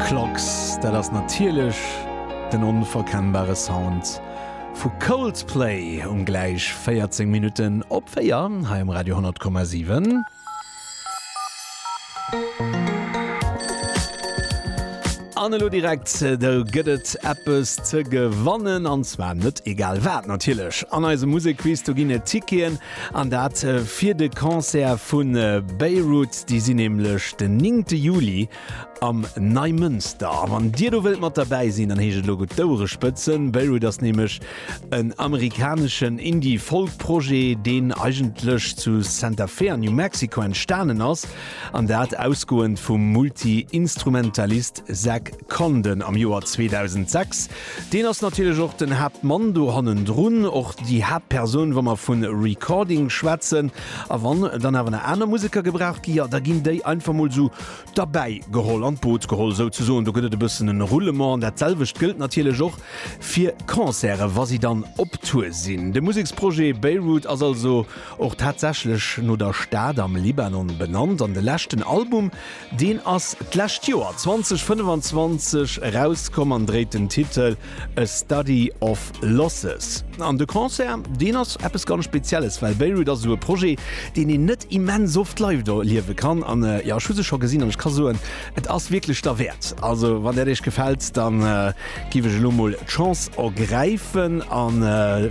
Clocks, dat ass natierlech den onverkennbare Sound vu Coldplay um gläich 14 Minutten op 4 hei um Radio 10,7. An elo direkt do gëtt et eppes ze gewannen, an zwar net egal wat natierlech. An eisem Musekquiz do ginn et Ticketen An dat fir de Concert vu Beirut. Déi sinn nämlech den néngte Juli am Neimënster. A wann Dir do wëllt mat derbäi sinn, dann heescht et elo gutt d'Ouere spëtzen. Beirut ass nämlech en amerikaneschen Indie-Folk-Projet, deen eigentlech zu Santa Fe an New Mexico entstanen ass. An dat ausgoend vum Multi-Instrumentalist Zach Condon am Joer 2006. Deen ass natierlech och den Haaptmann do hannendrun, och déi Haaptpersoun, wa mer vu Recording schwätzen. A wann dann awer nach aner Museker gebraucht ginn, jo, da ginn déi einfach mol esou derbäi geholl, an d'Boot geholl souzesoen. Do gëtt et e bëssen en Roulement. An dat selwecht gëllt natierlech och fir Concerten, wa si dann op Tour sinn. De Museksprojet Beirut ass also och tatsächlech no der Stad am Libanon benannt. An de leschten Album, Deen ass d'lescht Joer 2025 erauskomm an dréit den Titel A Study of Losses. An de Concert, deen ass eppes ganz Spezielles, well Beirut ass esou e Projet, deen een net immens oft live erliewe kann. An jo, ech hu se scho gesinn an ech ka soen, et ass wierklech derwäert. Also wann dat iech gefält, da giff ech elo mol d'Chance ergräifen a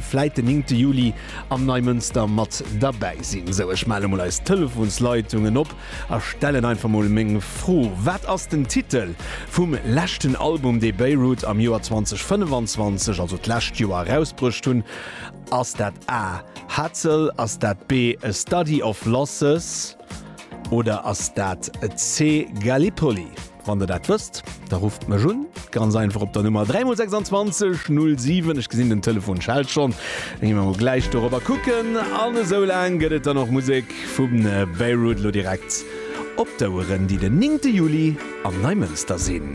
vläit den 9 Juli am Neimënster mat derbäi sinn. Sou, ech male mol eis Telefonsleitungen op. Ech stellen einfach mol meng Fro, Wat ass den Titel vum leschten Album, dee Beirut am Joer 2025, also d'lescht Joer, erausbruecht hunn? Ass dat A, Hatzel? Ass dat B, A Study of Losses? Oder ass dat C, Gallipoli? Wann der dat wësst, da rufft mech un, ganz einfach op der Nummer 3 mol 26 07. Ech gesinn den Telefon schellt schonn, da gi mer mol gläich dorobber kucken. An esou laang gëtt et dann och Musek vum Beirut, lo direkt op d'Oueren, déi den 9. Juli an Neimënster sinn.